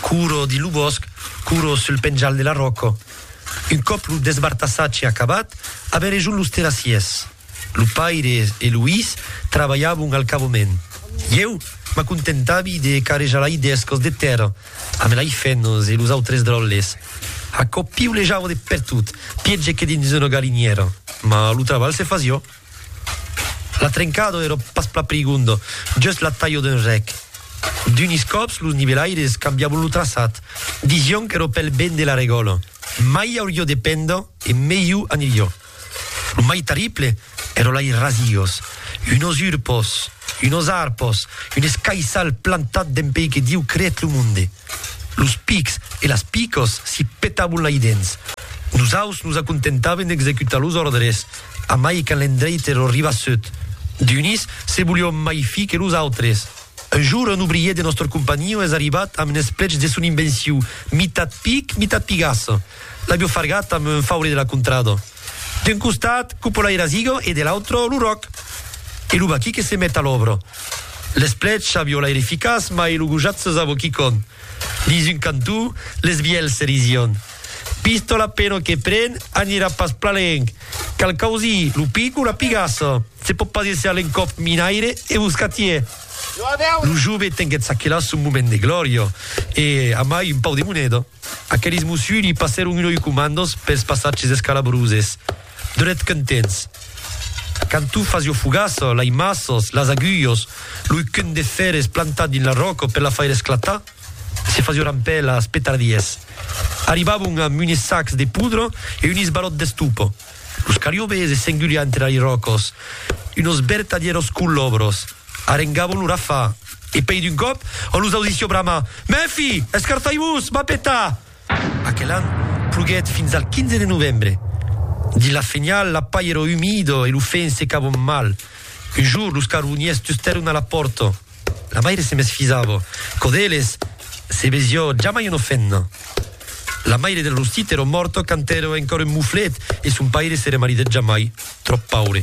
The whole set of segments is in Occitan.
Curo dins lo bòsc, curo sul penjal de la ròca. Un còp lo desbartassatge acabat, avèn rejont los terrassiers. Lo paire e lo his trabalhavon al cavament. Ieu m'acontentavi de carrejar lai d'escos de tèrra amb lai fenos e los autres dròlles. Aquò piulejava de pertot, pièger que dins una galinièra, mas lo trabalh se fasiá. La trencado èra pas plan prigonda, just la talha d'un rèc. D'unis còps los nivelaires cambiavon lo traçat, disián qu'èra pel ben de la regòla, mai auriá de penda e melhor aniriá. Lo mai terrible èra lei rasias, unos urpos, unos arpos, un escaissal plantat dempuei que Diu creèt lo monde. Los pics e las picos si petabon lai dens. Nosaus nos acontentaven d'executar los òrdres, amai quand l'endreite lo ribassut. D'unis se volion mai fi que los autres. Un jour un obrier de nòstre companhion es arribat amb n'esplech de son invenciu, mitat pic, mitat pigasse. L'avio fargat amb un faure de la contrada. D'un costat, Cupola e Razigo e de l'autre, lo Ròc e lo Baqui que se met a l'òbra. L'esplecha viola er eficaç mai lo gojat se zavo quicon. Dins un cantó, les vielhs se rision. Pistola peno que pren, anirà pas plan lenc. Cal causir lo pic o la pigassa. Se pòt pas èsser l'encòp minaire e boscatier. Lo jove tenguèt çaquelà son moment de glòria e, amai, un pau de moneda. Aqueles mossuli passèron un oi comandos pels passatges escalabroses, dret contents. Quand tu fas jo fogaça, lai masses, las agulhos, loi cun de fèrres plantat dins la ròca per la faire esclatar, se fas jo rampèlas, petardies. Arribavon amb unes sacs de poudra e un isbalòt d'estopa. Los cariobes e s'engulián entre li ròcos unos bertadièros colòbros, arengavon lo rafà e pei d'un còp on los audissió bramar, Mèfi! Escartai-vos! M'a petar! Aquel an ploguèt fins al 15 de novembre. Dins la fenhal la pair era umida e lo fenc secavon mal. Un jorn los carboniers tustèron a la pòrta. La maire se mesfisava. Quò d'eles, se vesió jamai una femna. La maire del Rostit èra mòrta quand èra encòra un moflet e son paire se remaridèt jamai, tròp paure.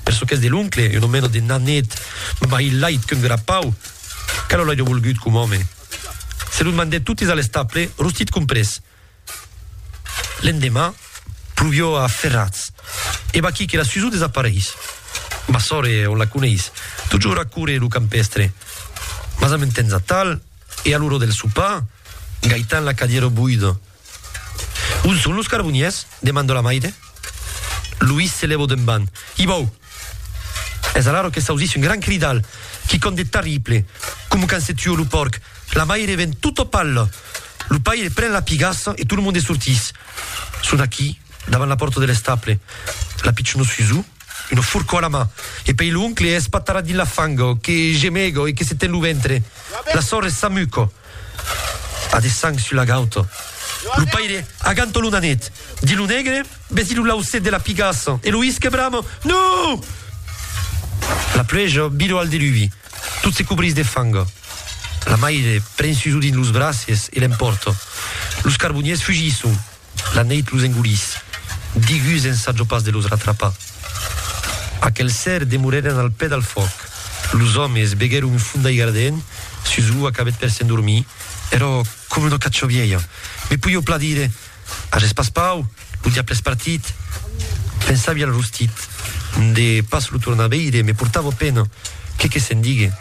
Per çò qu'es de l'oncle, una mena de nanet, mai lait qu'un grapau, que lo l'airia volgut com òme. Se los mandèt totes a l'estable, Rostit comprés. L'endemà, pluvió a ferrats. E vaquí que la Suzu desapareis. Ma sòre, on la coneis? Totjorn a córrer lo campèstre. Mas a mon temps atal, e a l'ora del sopar, Gaitan la cadièro boida. On son los carboniers? demando la maire. Luís se lèvo d'emban. Ibau! Es alaro que s'ausís un gran cridal, quicòm de tarrible, coma quand se tua lo pòrc, la maire ven tota palla, lo paire pren la pigassa e tot lo monde sortís. Son aquí, davant la pòrta de l'estable, la pichona Suzu, una forca a la man, e pei l'oncle espatarrat dins la fanga, que gemega e que se ten lo ventre. La sòrre s'amuca. A de sang sus la gauta. Lo paire aganta lo nanet. Di lo negre, Vesi lo lauset de la pigassa. E lo isque brama, Non! La pluèja vira al deluvi. Tot se cobrís de fanga. La maire pren Suso dins los braces e l'empòrta. Los carboniers fugisson. La neit los engolís. Digus ensajo pas de los ratrapar. Aquel ser demorèren al pè dal fuòc. Los òmes veguèron un fondaire ardent sus ua cabet per s'endormir. Èrò coma una cacha vièlha. Me poieu plan dire, Ages pas pau? Lo diable es partit. Pensavi al rostit. De pas lo tornar veire me portava pena. Qué que se'n digue.